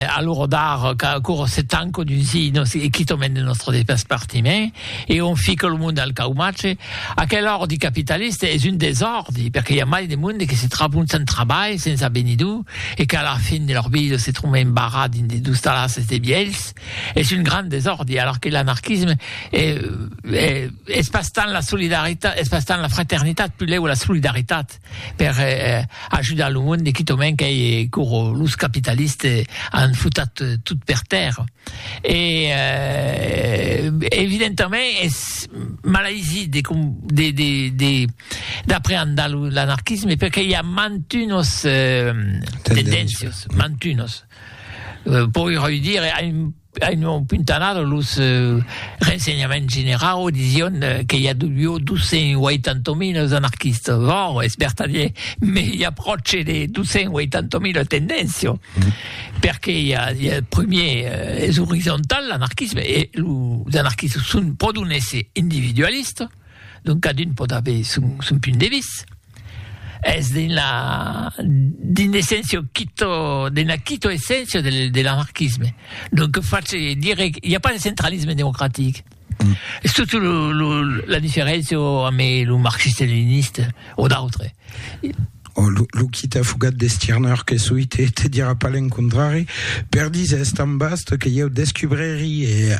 a l'ora d'ara qu'ancora se tanca d'uns inos e quitament de nòstre despartiment e on fica lo monde al caumatge, aquel òrdi capitalista es un desòrdi perque i a mai de monde que se trabon sens trabalh, sens avenidor e qu'a la fin de lor vida se tròban embarrats dins de dus talasses de vielhs, es un grand desòrdi, alara que l'anarquisme es pas tant la solidaritat, es pas tant la fraternitat, pulèu la solidaritat. per ajudar lo monde quitament qu'ei coro los capitaliste an futat tot per tèrra e evidentament es malaisit de com de de de d'apreandar lo l'anarquisme perque i a mantunos tendéncios mantunos pòi roi dire Avián puntanat los rensenhaments generau disiond que i avió 280.000 anarquistas, ò es vertadier, me i a pròche de 280.000 tendenciò, perque i a primier es orizontal l'anarquisme e los anarquistas son pòdon èsser individualistas, donc cadun pòt aver son punt de vista. Es d'una d'un essèncio quito d'una quito essèncio de de l'anarquisme. Lo que face dire i a pas de centralisme democratic. Es totu lo lo la diferéncia ame lo marxiste-leniniste o d'autre. O lo lo quita fugat de Stirner que soi te te dira pas l'encontrari, per dise es tan vast que ieu descubreri e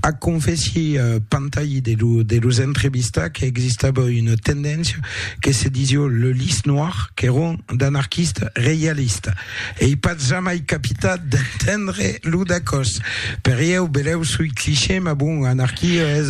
Ac confèssi Pantayi de los entrevistats qu'existava una tendéncia que se disió le Lys Noir qu'èron d'anarquistes reialistes. Ei pas jamai capitat d'entendre lo dacòs. Per ieu, belèu soi cliché, mas bon, anarquia es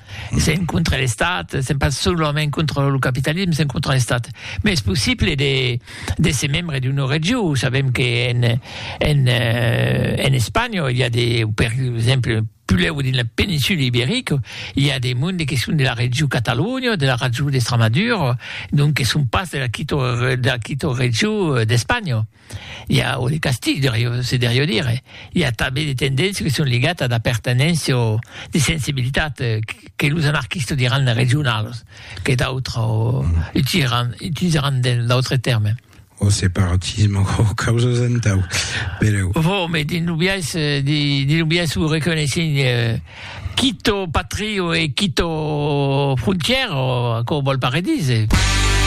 s'en contra l'Estat, s'en pas solament contra lo capitalisme, s'en contra l'Estat. Mais es possible de, de se membre d'una regió. Sabem que en, en, eh, en Espanya, il y a des, per exemple, puleu dins la péninsule ibérique, il y a des mondes qui sont de la région Catalogne, de la région d'Extremadure, donc qui sont pas de la Quito, de la Quito région euh, d'Espagne. i a o de castig se deriu dire, i a tanben de tendéncia que son ligat a d'apertenéncia o de sensibilitat que los anarquistas diràn regionalas, que d'autres utilizaràn utilizaràn d'autres tèrmes. O separatisme o causas entau, pereu. Vo, me dins lo biais de dins lo biais o reconeissent quito patrio e quito frontièra, o aquò vòl pas redire.